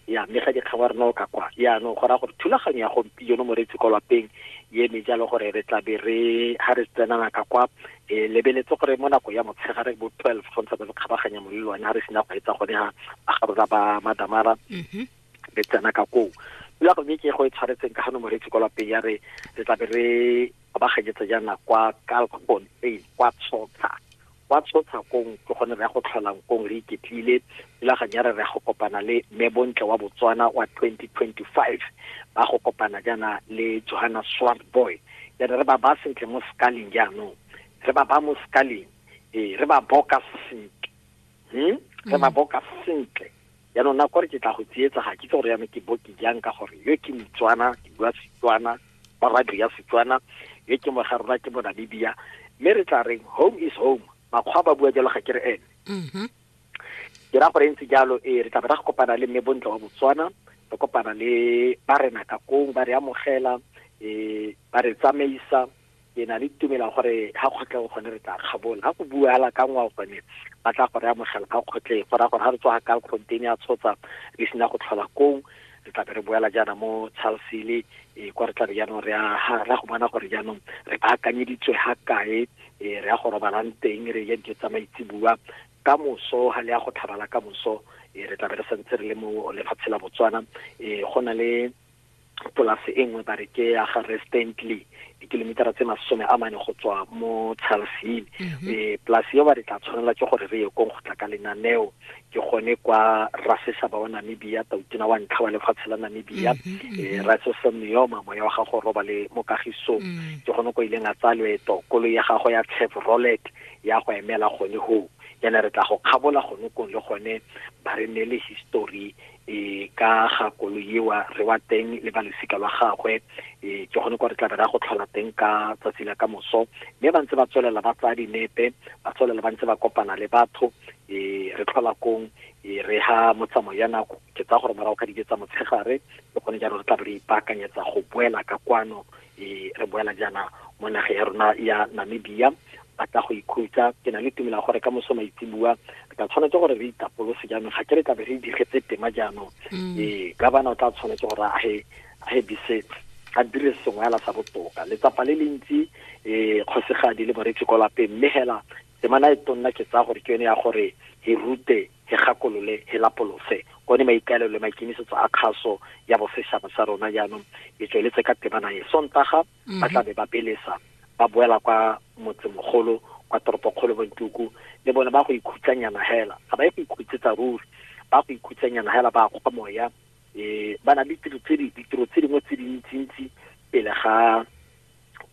ya mme ga dikgangwa re no ka kwa yaanong go raya gore thulaganyo ya gompieno moreetsi kwa lapeng ye eme jalo gore re tla be re ga re tsenana ka kwa e lebeletse gore mo nako ya motshegare bo twelve go ntse ba re kgabaganya molelo one ga re sena go etsa gone ga ba ga rona ba madamara mhm. re tsena ka koo pula go ke go e tshwaretseng ka gano moreetsi kwa lapeng ya re re tla be re kgabaganyetsa jaana kwa kalkgon a kwa tshotsha kwa tshotsha kong ke gone re ya go tlholang kong re iketlile thulaganyo ya re re ya go kopana le mme bontle wa botswana wa 2025 ba go kopana jaana le johanna swart boy jaana re ba ba sentle mo scaling jaanong re ba ba mo scaling ee re ba boka sentle hmm? re ba mm. boka sentle Jaanong nako re ke tla go tsietsa ga kitse gore yana ke bo ke jang ka gore yo ke Motswana ke bua Setswana ba radio ya Setswana yo ke moga rona ke Monamibia mme re tla reng home is home makgwa ba bua jalo ga ke re ene mm-hmm. ke ra gore e ntse jalo ee re tla be ra go kopana le mme bontle wa Botswana re kopana le ba rena ka kong ba re amogela um ba re tsamaisa ke na le tumela gore ga kgotleng gone re tla kgabola ga go buala ka ngwao gone ba tla gore amogela ga kgotleng go raya gore ga re tswa ka kgonteng ya tshotsa re sena go tlhola kong re tlabe re boela jaana mo charlesile e eh, kwa re tlabe jaanong re ra go bona gore jaanong re baakanyeditswe ga kae e re ya go robalang teng re ja dijo tsa maitsebua ka moso ga le ya go tlhabala ka moso e re tlabe re santse re le mo lefatshe la botswana e go na le polase e nngwe ba re ke ya ga re stantley dikilomitara tse masome a mane go tswa mo charlesine um mhm. eh, polase yo ba re tla tshwanela ke gore re ye kong go tla ka lenaneo ke gone kwa rasesaba wa namibia tautona wa ntlha wa lefatshe la namibia um ratsosa meoma moya wa gago roba le mokagisong ke gone ko ileng a tsaya loeto kolo ya gago ya chevrolet ya go emela gone hoo yana re tla go kgabola gone kong le gone ba re ne le history e ka ga kolo ewa re wa teng le ba losika lwa gagwe e ke gone kwa re tla be ra go tlhola teng ka tsatsi la ka moso mme ba ntse ba tswelela ba tsaya dinepe ba tswelela ba ntse ba kopana le batho e re tlhola kong e re ha motsamo ya nako ke tsa gore morago ka dike tsa motshegare le gone jalo re tla be re ipaakanyetsa go boela ka kwano e re boela jaana mo nageng ya rona ya namibia ba tla go ikhutsa ke na le tumela gore ka moso maitsebua re tla tshwanetse gore re itapolose jaanong ga ke re tlabe re digetse tema jaanong mm. ee ka bana o tla tshwanetse gore a he a he bise a dire sengwe ala sa botoka letsapa le lentsi um kgosegadi le boretsi ko lapeng mme hela temana e tonna ke tsaya gore ke yone ya gore e rute he gakolole, he lapolose, one maikaelelo le maikemisetso a kgaso ya boseshaba sa rona jaanong e tsweletse ka temana e. Sontaga ba mhm. tla be ba belesa ba boela kwa motsemogolo kwa toropokgolo bontuku le bone ba go ikhutsanyana hela ga ba ye go ikhutsetsa ruri ba go ikhutsanyana hela ba kgwa moya um ba na le ditiro tse dingwe tse dintsintsi pele ga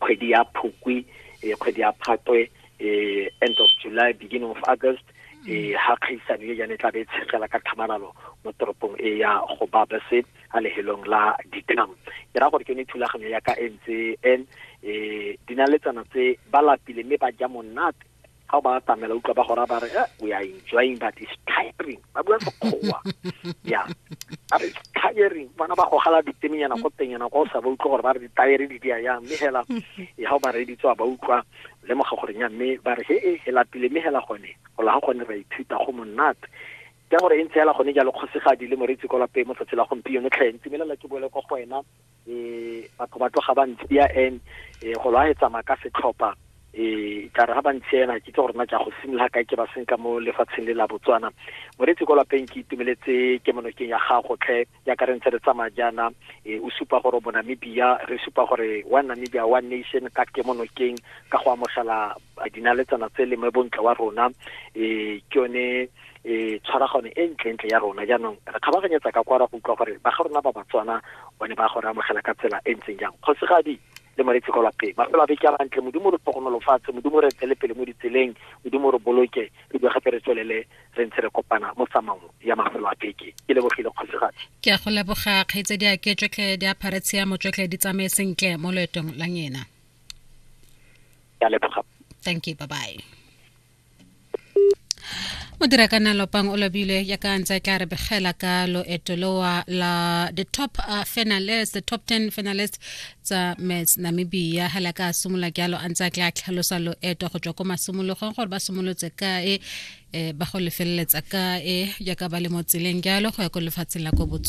kgwedi ya phukwi eh, kgwedi ya phatwe eh, end of july beginning of august e ha kgaisano e jane tlabe e tshegela ka tlhamalalo mo toropong e ya go babese a lehelong la ditam ke ra gore ke ne thulaganyo ya ka e ntse en e dinaletsana tse ba lapile mme ba ja monate ga o ba atamela utlwa ba gora ba re eh, we are enjoying but it's tiring ba bua sekgowa ya ba re it's tiring bona ba gogala ditemenyana ko tenyana kwa o sa ba utlwa gore ba re ditayere di dia yang mme hela e ga o ba reeditse wa ba utlwa lemoga gore nya mme ba re he e he lapile mme hela gone go la ga gone ra ithuta go monate ke gore e ntse hela gone jalo kgosegadi le moretsi kwa lapeng mo tsatsi la gompieno tlhentsi mme lela ke boele kwa go wena eh batho ba tloga ba ntsia and eh go lwa tsamaya ka setlhopha eh ka re ga ba ntsia ena ke tse gore na ke go simolola kae ke ba senka mo lefatsheng le la Botswana moretsi ko lapeng ke itumeletse ke monokeng ya gago tlhe ya ka re ntse re tsamaya jaana eh o supa gore bo Namibia re supa gore wa Namibia one nation ka ke monokeng ka go amogela dinaletsana tse le mo bontle wa rona eh ke yone e tshwaragano e ntlentle ya rona jaanong re kgabaganyetsa ka kwa ra go utlwa gore ba ga rona ba batswana one ba go re amogela ka tsela e ntseng jang kgosigadi le moretse kwa lapeng mafelo a beke a mantle modimo re tlhogonolofatse modimo re tsele pele mo ditseleng modimo re boloke re bua gape re tswelele re ntse re kopana mo tsamang ya mafelo a beke ke lebogile kgosigadi ke a go leboga kgaitse di a ke tsotlhe di aphare tshiamo tsotlhe di tsamaye sentle mo loetong la ngena ke a leboga thank you bye bye o dira ka nalopang o lobile ya ka ntse tla re begela ka loeto lowa la the top uh, finalist the top 10 finalist tsa mets namibia hela ka simolola jalo a ntse a tla tlhalosa loeto go tswa ko masimologong gore ba simolotse kae eh, ba go lefeleletsa kae jaaka ba le mo tseleng jalo go ya ko lefatsheng la ko botswana